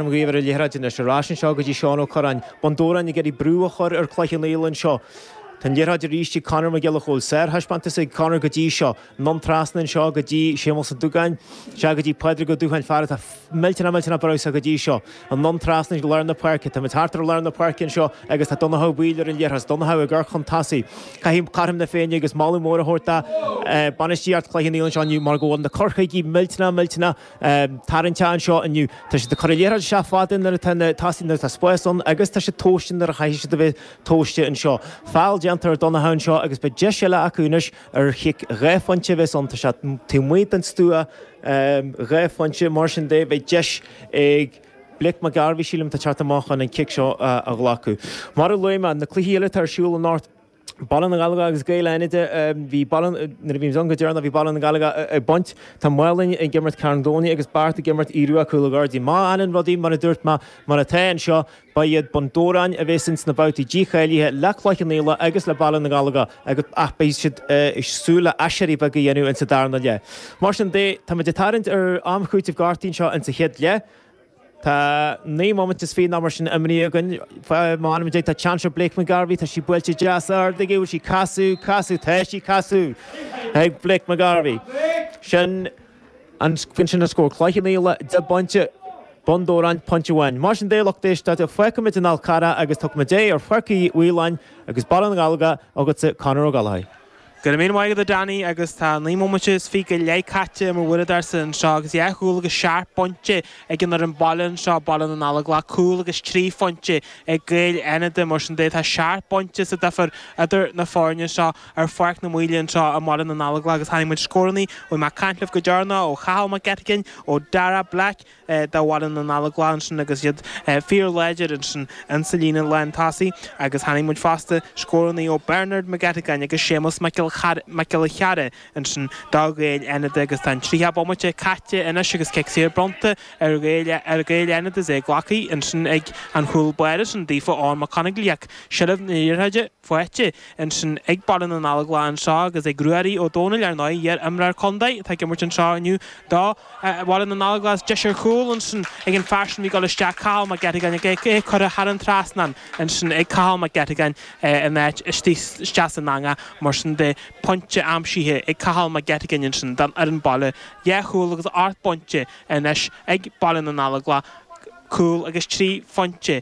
an ríomhaire liathróid anois. Ar ais anseo go dtí Seán Ó Cuirreáin, Bun Dobhráin, ag iarraidh brú a chur ar Chloich Cheann Fhaola anseo. Tá an liathróid arís ag Conor Mac Giolla Chóill. Sárthaispeántas ag Conor go dtí seo. Anonn trasna anseo go dtí Séamus Ó Dugáin. Sea, go dtí Pádraig Ó Dúcháin, fear atá millteanach millteanach breise go dtí seo. Anonn trasna go lár na páirce. Táimid thart ar lár na páirce anseo agus tá Donnchadh Ó Baoill ar an liathróid. Donnchadh ag amharc chun tosaigh. Caithfidh Caithfidh na Féinne agus moladh mór a thabhairt do bainistíocht Chloich Cheann Fhaola anseo inniu mar go bhfuil na taicticí millteanach millteanach tarraingteach anseo inniu. Tá siad ag cur an liathróid isteach fada nuair atá na tosaithe, nuair atá spás ann agus tá siad tomhaiste nuair a chaithfidh siad a bheith tomhaiste anseo. Feall déanta ar Dhonnacha anseo agus beidh deis eile acu anois ar chic dhá phointe a bheas ann, tá sé taobh amuigh den stua, dhá phointe, mar sin de beidh deis ag Blake McGarvey, sílim, atá ag teacht amach chun an cic seo a ghlacadh. Mar a luaigh mé, na cluichí eile atá ar siúl i. Baile na nGallóglach agus Gaeil Fhánada. Bhí Baile na. Nuair a bhí mise ann go deireanach bhí Baile na nGallóglach ag baint. Tá Málainn ag imirt Carn Domhnaigh agus Beart ag imirt Aodh Rua Cúil na gCuirridín. Má fhanann rudaí mar a dúirt mé, mar atá anseo, ba iad Bun Dobhráin a bheas ins na babhtaí dícháilithe le Cloich Cheann Fhaola agus le Baile na nGallóglach agus ach beidh siad ag súil le aiséirí beag a dhéanamh insa darna leath. Mar sin de, táimid ag tarraingt ar am cúitimh gortuithe anseo insa chéad leath. Tá naoi mbomaite is fiche nó mar sin imeartha againn. M'anam Dé, tá seans ar Blake McGarvey, tá sí buailte deas ard aige, bhfuil sí? Trasna, trasna, tá sí trasna ag Blake McGarvey. Sin an, sin sin an scór. Cloich Cheann Fhaola, deich bpointe, Bun Dobhráin, pointe amháin. Mar sin de, lucht éisteachta, fágfaimid an Fál Carrach agus tugfaimid aghaidh ar chluiche Ghaeil Fhánada agus Baile na nGallóglach, chugatsa Conor Ó Gallchóir. Go raibh míle maith agat a Danny agus tá naoi mbomaite is fiche go leith caite ar m'uaireadóirsa anseo agus dhá chúl agus seacht bpointe ag an fhoireann baile anseo, Baile na nGallóglach, cúl agus trí phointe ag Gaeil Fhánada, mar sin de tá seacht bpointe sa duifear idir na foirne seo ar Pháirc na Maoile anseo i mBaile na nGallóglach agus chonaic muid scórannaí ó bhí mé ag caint libh go deireanach, ó Chathal Mac Eiteagáin, ó Darragh Black. do Bhaile na nGallóglach ansin agus iad fíorláidir ansin insa líne lántosaigh agus chonaic muid fosta scórannaí ó Bernard McGettigan agus Séamus Mac Giolla Cheara ansin do Ghaeil Fhánada agus tá an tríocha bomaite caite anois agus cic saor bronnta ar Ghaeil Fhánada is é glactha ansin ag an chúl báire sin daofa Eoghan McConigley ach seilbh na liathróide. faighte ansin ag Baile na nGallóglach anseo agus ag Ruairí Ó Domhnaill, ar ndóigh, iar-imreoir contae atá ag imirt anseo inniu do Bhaile na nGallóglach is deis ar chúl ansin ag an fear sin a bhí ag dul isteach, Cathal Mac Eiteagáin, ach é curtha thar an trasnán ansin ag Cathal Mac Eiteagáin in áit isteach san eangach, mar sin de. Pointe aimsithe ag Cathal Mac Eiteagáin ansin don fhoireann baile, dhá chúl agus ocht bpointe anois ag Baile na nGallóglach, cúl agus trí phointe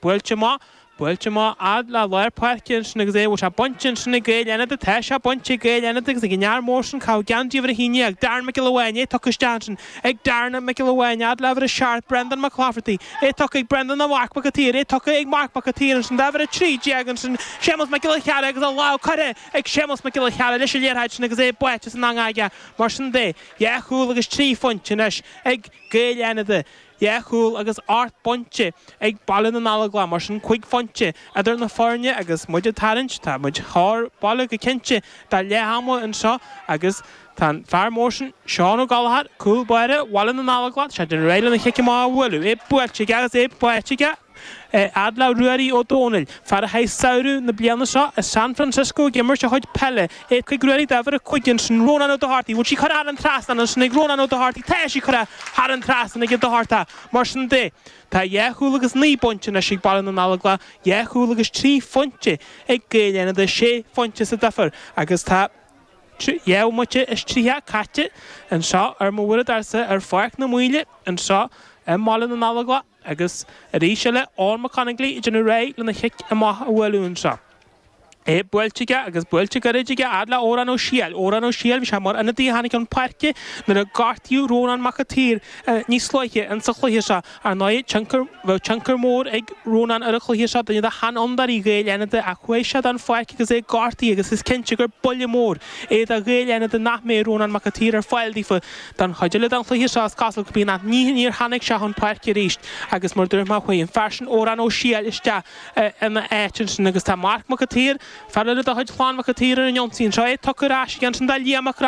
Buailte maith, buailte maith, fhad le lár páirce ansin agus é, bhfuil sé bainte ansin ag Gaeil Fhánada, tá sé bainte ag Gaeil Fhánada agus ag an fhear mór sin, ag caitheamh geansaí uimhir a naoi, ag Darren Mac Giolla Bháin, é tugtha isteach ansin ag Darren Mac Giolla Bháin, fhad le huimhir a seacht Brendan McClafferty, é tugtha ag Brendan do Mharc Mac a' tSaoir, é tugtha ag Marc Mac a' tSaoir ansin d'uimhir a trí déag ansin, Séamus Mac Giolla Cheara agus a lámh curtha ag Séamus Mac Giolla Cheara leis an liathróid sin agus é buailte san anga aige, mar sin de, dhá chúl agus trí phointe anois ag Gaeil Fhánada, Dhá chúl agus ocht bpointe ag Baile na nGallóglach mar sin cúig phointe idir na foirne agus muid ag tarraingt. Tá muid chóir baile go cinnte do leath ama anseo agus tá an fear mór sin Seán Ó Gallachóir, cúl báire Bhaile na nGallóglach, is é ag déanamh réidh lena chic amach a bhualadh, é buailte aige agus é buailte aige! Fhad le Ruairí Ó Dónaill, fear a chaith samhradh na bliana seo i San Francisco ag imirt a chuid peile, é tugtha ag Ruairí d'uimhir a cúig ansin, Rónán Ó Dochartaí, bhfuil sí curtha thar an trasnán ansin ag Rónán Ó Dochartaí, tá sí curtha thar an trasnán ag an Dochartach, mar sin de, tá dhá chúl agus naoi bpointe anois ag Baile na nGallóglach, dhá chúl agus trí phointe ag Gaeil Fhánada, sé phointe sa difear agus tá dhá bhomaite is tríocha caite anseo ar m'uaireadóirsa ar Pháirc na Maoile anseo i mBaile na nGallóglach. Agus arís eile, Eoin Mac Conaiglí ag déanamh réidh lena chic amach a bhualadh anseo. É buailte aige, agus buailte gairid aige, fhad le Odhrán Ó Siadhail. Odhrán Ó Siadhail, bhí sé mar ionadaí a tháinig chun páirce nuair a gortaíodh Rónán Mac a tSaoir níos luaithe in sa chluiche seo. Ar ndóigh, tionchar, bheadh tionchar mór ag Rónán ar an chluiche seo, duine de sheanfhondúirí Ghaeil Fhánada, ach chuaigh sé den pháirc agus é gortaithe agus is cinnte gur buille mór é do Ghaeil Fhánada nach mbeidh Rónán Mac a tSaoir ar fáil daofa. Don chuid eile den chluiche seo is cosúil go mbíonn an nigh níor tháinig sé chun páirce arís agus mar dúirt mé chuaigh an fear sin Odhrán Ó Siadhail isteach ina áit ansin agus tá Marc Mac a tSaoir, fear eile de chuid Chlann Mhic a tSaoir ar an ionsaí anseo, é tugtha ar ais aige ansin do Liam Mac Reann